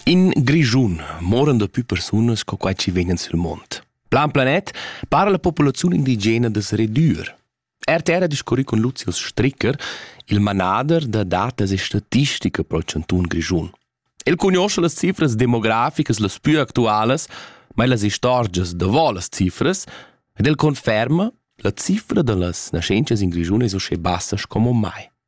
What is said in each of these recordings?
In Grischun moran da pü persunas co quai chi vegnan sül mond. Plan Planet para la populaziun indigena das redür. RTR ha discurri con Lucius Stricker, il manader da datas e statistica pel chanton Grischun. El conosce las cifras demograficas las più actualas, ma las istorgias davò las cifras, ed el conferma la cifra da las nascenzias in Grischun es uschè bassas como mai.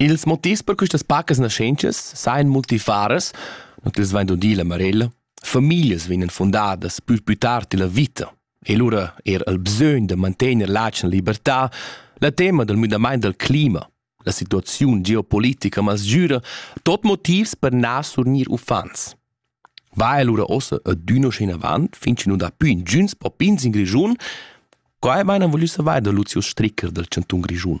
Ils motivs per questas pacas naschentschas sajan multifaras, not els vain dudi la Marella. Famiglias vegnan fundadas pü pü tard illa vita e lura eir il bsögn da mantegner l'atgna libertà, la tema dal müdamaint dal clima, la situaziun geopolitica masgüra, tot motivs per na surgnir uffants. Va allura ossa adüna schi inavant, fin chi nu dà pü ingüns popins in Grischun. Quai maina voglü savair da Lucius Stricker dal Chantun Grischun.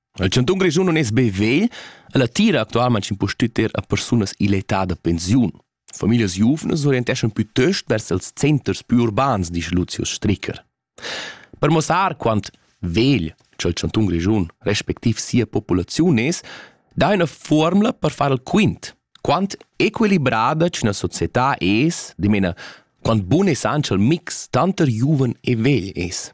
Il chantun Grischun non es be vegl, el attira actualmaing impustüt er a persunas ill'età da pensiun. Familias giuvnas orienteschan pütöst vers els centers più urbans, dice Lucius Stricker. Per mossar quant vegl ch'el chantun Grischun respectiv sia populaziun es, dà üna formula per far il quint. Quant equilibrada ch'üna società es, dimena, quant bun es anche il mix tanter giuven e vegl es.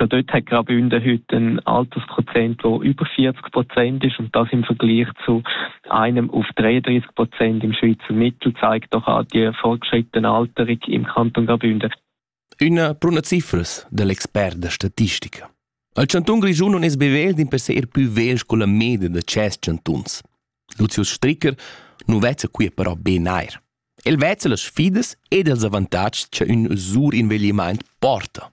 schon dort hat gerade Hundehütte ein Altersprozent, wo über 40 Prozent ist und das im Vergleich zu einem auf 33 Prozent im Schweizer Mittel zeigt doch auch die fortgeschrittene Alterung im Kanton Graubünden. Una bruna cifras dell'expert da statistica. Il Chanton Grischun non es bevel din per se er più vel con la media da ces chantuns. Lucius Stricker nu vezza qui però ben eir. El vezza las sfidas ed els avantatgs che ün sur inveglimaint porta.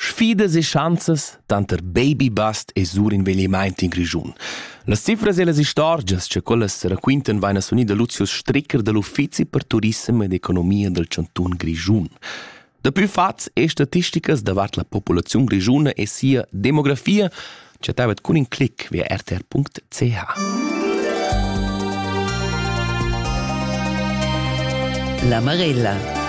Sfidas e schanzas tanter babybust e surinveglimaint in Grischun. Las cifras e las istorgias cha quellas raquintan vain a sunir da Lucio Stricker da l'Uffizi per turissem ed economia dal chantun Grischun. Dapü fats e statisticas davart la populaziun grischuna e sia demografia chattavet cun in clic via rtr.ch. La Marella